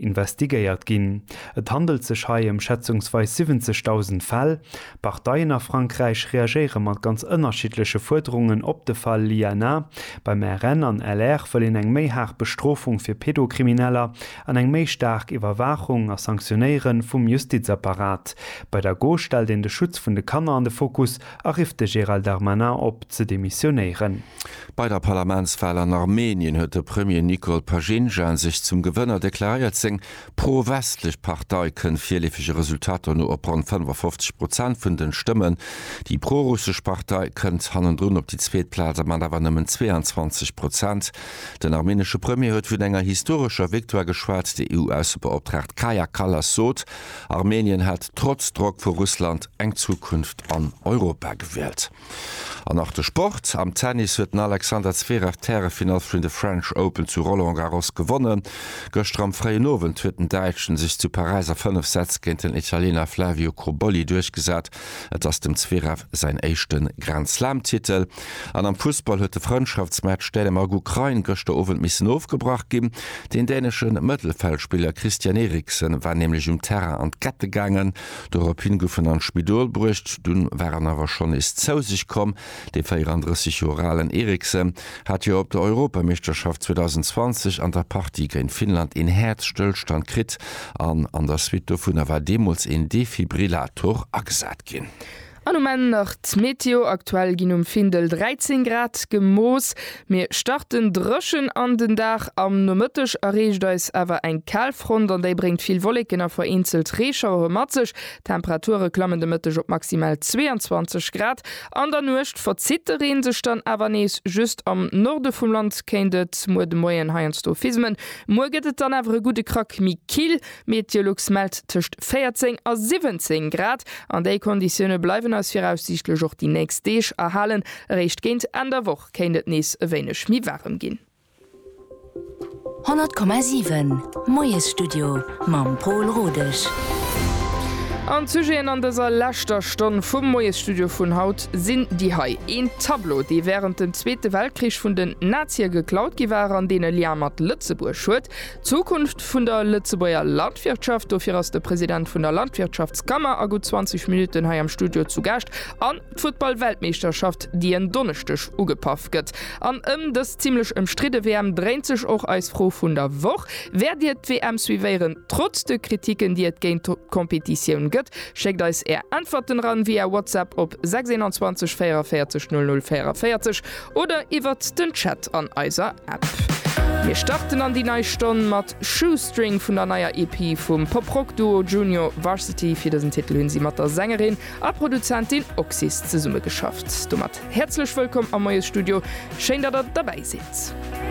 investigéiert ginn. Et handelt sech hei ëm schätzungsweis 70.000 Fäll. D'Parteien a Frankräich reagéiere mat ganz ënnerschiddleche Fuerderungen op de Fall Liana. Beim RN an LR wëll een eng méi haart Bestrofung fir Pedokrimineller an eng méi staark Iwwerwaachung a Sanktionéiere vum Justizapparat. Bei der Gauche stellt een de Schutz vun de Kanner an de Fokus. a rifft de Gérald Darmanin op, ze demissionéieren. Bei der Parlamentswal an Armenien huet de Premier Nikol Pashinjan sech zum Gewënner deklaréiert. Seng pro-westlech Partei kënnt virleefege Resultater no op ronn 55 Prozent vun den Stëmmen. Déi pro-russesch Partei kënnt hannendrun op déi zweet Plaz a mat awer nëmmen 22 Prozent. Den armenesche Premier huet vun enger historescher Victoire geschwat. D'EU-Aussebeoptraagt Kaja Kallas sot, Armenien hat trotz Drock vu Russland eng Zukunft an Europa gewielt. An nach de Sport, Am Tennis huet den Alexander Zverev d'Härefinall vun de French Open zu Roland Garros gewonnen. Gëschter am fréien Owend huet den Däitschen sech zu Paräis a 5 Sätz géint den Italiener Flavio Cobolli duerchgesat Et ass dem Zverev säin éischte Grand Slam-Titel. An am Fussball huet de Frëndschaftsmatch Dänemark-Ukrain gëschter Owend missen ofgebrach ginn. Den dänesche Mëttelfeldspiller Christian Eriksen war nämlech um Terrain an d'Kette gaangen. Doropshi gouf en an d'Spidol bruecht, dunn war en awer schonn nees zou sech komm. De 34 Joer alen Eriksen hat jo op der Europameeschterschaft 2020 an der Partie géint Finnland een Häerzstëllstand kritt an an der Suite dovunner war deemools een Defibrillator agesat ginn. An um Enn nach d'Meteo, Aktuell ginn um Findel 13 Grad gemooss. Mir starten dréchen an den Dag, am Nomëtteg erreecht eis awer eng Kalfront an déi bréngt vill Wolleken a vereenzelt Reeschauere mat sech. D'Temperature klammen de Mëtteg op maximal 22 Grad. An der Nuecht verzitt de Reen sech dann awer nees, just am Norde vum Land kéint et muer de Moien heiansdo fismen. Muer gëtt et dann awer e gudde Krack méi kill, Meteolux mellt tëscht 14 a 17 Grad. An déi Konditioune bleiwen eis viraussiichtlech och déi nächst Deeg erhalen, eréischt géint Enn der Woch kéint et nees e wéineg méi waarem ginn. 100,7 Moiesstudio mam Pol Rodesch. An d'Sujeten an dëser leschter Stonn vum Moiesstudio vun haut sinn déi hei, Een Tableau, dee wärend dem Zweete Weltkrich vun den Nazie geklaut gi war an deen e Lien mat Lëtzebuerg huet, d'Zukunft vun der Lëtzebuerger Landwirtschaft, dofir ass de President vun der Landwirtschaftskammer a gutt 20 Minutten hei am Studio zu Gaascht, an. D'Futtball-Weltmeeschterschaft, déi en Donneschdeg ugepaff gëtt. An ëm dës zimlech ëmstridde WM dréint sech och eis Fro vun der Woch. Wäert Dir d'WM suivéieren, trotz de Kriticken, déi et géint d'Competitioun gëtt? Schéckt eis Är Äntwerten eran via WhatsApp op 621 44 00 44 oder iwwert den Chat an eiser App. Mir starten an déi nei Stonn mat Shoestring vun der neier EP vum Pop-Rock-Duo Junior Varsity. Fir dësen Titel hunn si mat der Sängerin A Produzentin Oxys zesummegeschafft. Domat häerzlech wëllkomm am Moiesstudio. Schéin, datt der derbäi sidd.